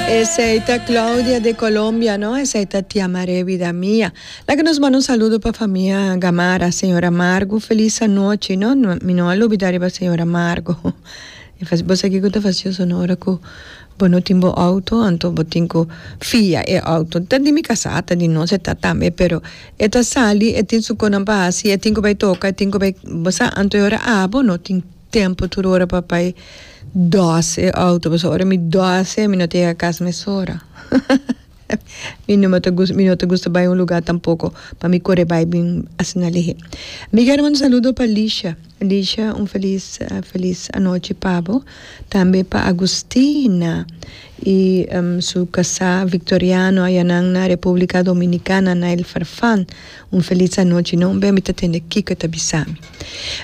Esei ta Claudia de Colombia no esei ta tia Maree vida mia laga nos manda un saludo pa famia Gamarra señora Margo feliz anochi no mi no a lubida riba señora Margo bo sa kiko ta facio so no ora cu bo no tin bo auto anto bo tin cu fia e auto ta di mi casa ta di nos e ta tambe pero e ta sali e tin su conan pa haci e tin cu bay toca e tin cu bay bo sa anto e ora abo no tin Tempo tur ora papai dos e auto pasobra ora mi dos mi no ta yega cas mesora mi no ta gusta mi no ta gusta bai un lugar tampoco pa mi core bai bin asina lehe mi quiero manda un saludo pa Lisha Lisha un feliz feliz anochi pabo tambe pa Agustina y su casa Victoriano aya nan na Republica Dominicana na el Farfan un feliz anochi no mi ta tende kico ta bisami.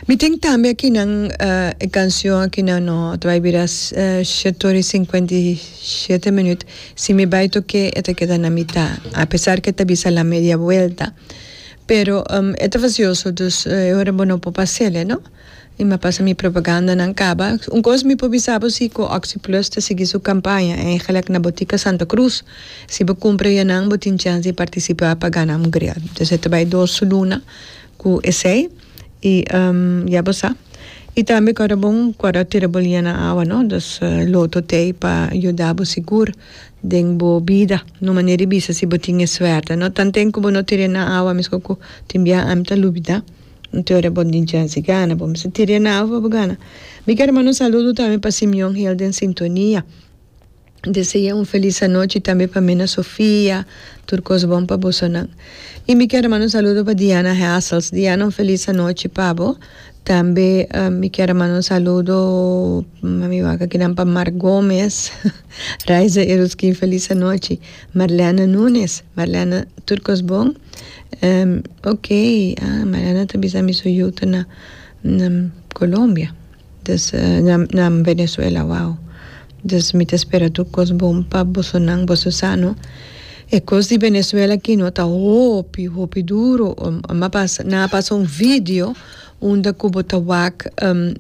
Mi tin tambe akinan e cancion akinan no ta bay bira siete ora y cincuenta y siete minuut si mi bay toke e ta keda na mita a pesar ke ta bisa la media vuelta pero e ta vacioso dus e ora bo no por pasele no y mi a pasa mi propagandanan caba un cos mi por bisa bo si cu oxi plus ta sigui su campaña eigenlijk na botica santa cruz si bo cumpra enan bo tin chance di participa pa gana un grial entonces e ta bay dos luna Cu esey y ya bo sa. Y tambe cuando bo cuando tira bo lina na awa no dus loto tey pa yuda bo sigur den bo bida na un manera di bisa si bo tin e suerte no tanten cu bo no tira na awa mesco cu tin bia ami ta lubida un te ora bo dichance gana bo mester tira na awa pa bo gana mi ker manda un saludo tambe pa Simeon hel den sintonia. Dese'é un felis anochi tambe pa mina Sofia, tur kos bon pa bosonan. I mi kier a manda un saludo pa Diana Hassels. Diana un felis anochi pa bo. Tambe mi kier a manda un saludo pa mi wak akinan pa Mark Gomez, Raiza e Ruski un felis anochi, Marlene Nunes, Marlene tur kos bon, ok, Marlene ta bisa mi su yu ta na Colombia. Des nan Venezuela wou. Des mi ta spera tur kos bon pa boso nan boso sano e kos di Venezuela kino ta hopi hopi duro nan a pasa un video unda ku bo ta wak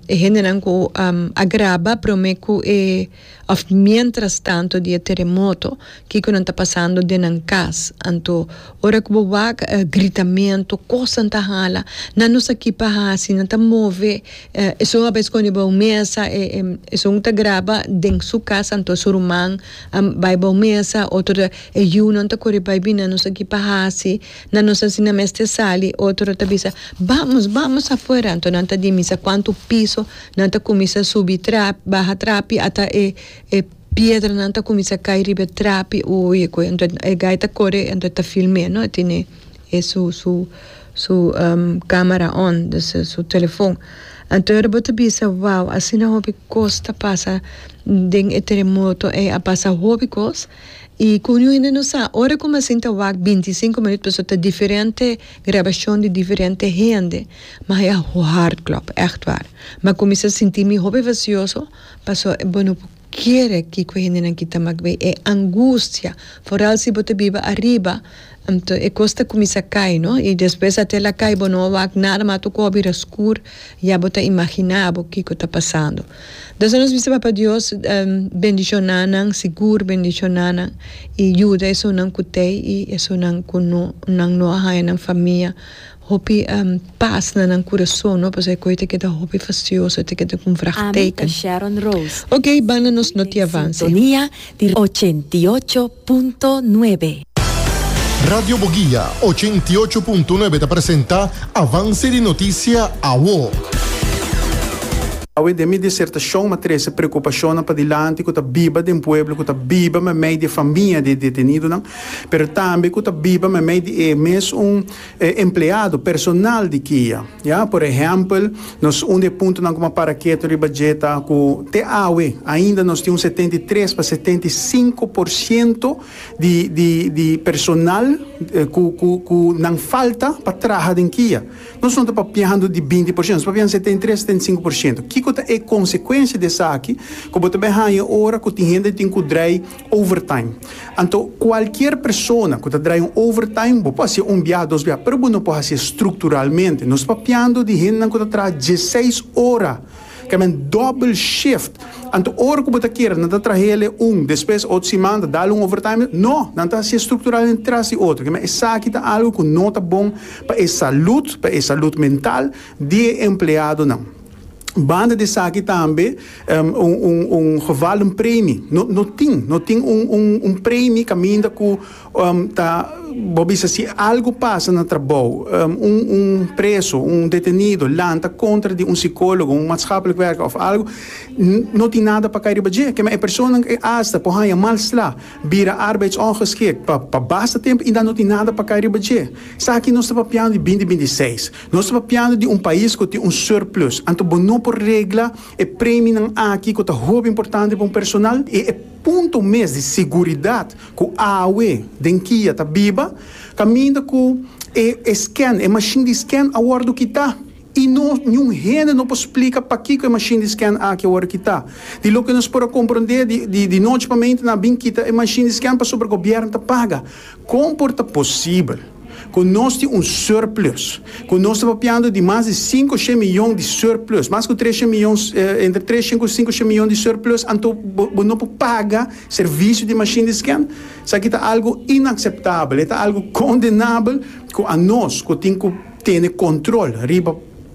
e hende nan ku a graba prome ku e. Òf miéntras tantu di e teremoto, kiko nan ta pasando den nan kas? Anto, ora ku bo wak gritamentu, kosnan ta hala, nan no sa ki pa hasi, nan ta move, esun a bes kònde bou mesa, esun ta graba den su kas, anto su ruman a bai bou mesa, otro ta, e yunan ta kore bai bini, nan no sa ki pa hasi, nan no sa si nan mester sali, otro ta bisa, Bamos, bamos afuera! Anto nan ta di misa kuantu piso. Nan ta cuminsa subi trapi, baha trapi ata e e piedranan ta cuminsa cay riba e trapi oye cu ento e guy ta core ento ta filme no e tine e su su su camera on dus e su telefon anto ora bo ta bisa wao asina hopi cos ta pasa den e teremoto ey a pasa hopi cos y cu un hende no sa ora como asin ta wak binti y cinco minuut pasobra ta diferente. Grabashon di diferente hende, ma e a hard klòp, ègt waar. M'a kuminsá sinti mi hopi vasioso, pasó bo no por kere kiko e hendenan kita m'a gbei e angustia, foral si bo ta biba ariba, anto e kos ta kuminsá kai, no, i despues ate el a kai bo no a wak nada, ma ato kò a bira skur. Ya bo ta imaginá bo kiko ta pasando. Desha nos bisa Papa Dios bendishoná nan, sigur bendishoná nan, i yuda esunnan ku t'ei i esunnan ku no, nan no a haña nan famia hopi pas na nan kurason, no, pasobra e kos ei ta keda hopi fasioso, ei ta keda ku un vraagteken. Oké, banda nos notiavanse. di ochenta i ocho punto nuebe. Radio Boguia ochenta i ocho punto nuebe ta presenta Avance di Noticia Awo. Awe den mi disertashon mi a trese preokupashonnan padilanti ku ta biba den pueblo ku ta biba meimei di e famia di e detenidonan, pero tambe ku ta biba meimei di e mes un E empleado, personal di kia, ya. Por ehèmpel, nos un di e puntonan ku mi a para ketu riba dje ta ku te awe ainda nos tin un setenta i tres pa setenta i sinku por siento di di di personal ku ku ku nan falta pa traha den kia. Nos no ta papiando di binti por siento, nos ta papiando setenta i tres, setenta i sinku por siento. Kiko ta e konsekuensia di esaki ku bo ta bai haña ora ku tin hende tin ku drai? Overtime. Anto cualkier persona cu ta draya un overtime, bo por haci'e un biaha, dos biaha, pero bo no por haci'e structuralmente. Nos papiando di hendenan cu ta traha dieseis ora, ca men double shift. Anto ora cu bo ta kier, nan ta trahaele un, despues otro siman ta dal un overtime. No, nan ta haci'e structuralmente tras di otro. Kimen esaki ta algo cu no ta bon pa e salud, pa e salud mental di e empleadonan. Banda di esaki tambe un geval di un premi no tin, no tin un premi caminda cu ta bo bisa si algo pasa na trabou un preso, un detenido lanta contra di un psicologo, un maatschapelijk werker of algo no tin nada pa kai riba dje kema e persona asta por haya mal sla bira arbeidsongeschikt pa basta tempo y dan no tin nada pa kai riba dje esaki nos ta papiando di binti binti seis. Nos ta papiando di un pais ku tin un surplus, anto bo no por regla e preminan aki ku ta hopi importante pa un personal i e punto mes di seguridat ku awe den kia ta biba kaminda ku e e scan, e mashin di scan a wòrdu kitá i no niun hende no por splika pakiko e mashin di scan aki a wòrdu kitá. Di loke nos por a komprondé di di di nochi pa mente nan a bin kita e mashin di scan pasobra gobièrnu ta paga. Kon por ta posibel ku nos tin un surplus ku nos ta papiando di mas di sinku shen miyon di surplus, mas ku tres shen miyon, entre tres shen ku sinku shen miyon di surplus, anto bo no por paga servisio di mashin di sken? Esaki ta algu inakseptabel, e ta algu kondenabel ku anos ku tin ku tene kontrol riba.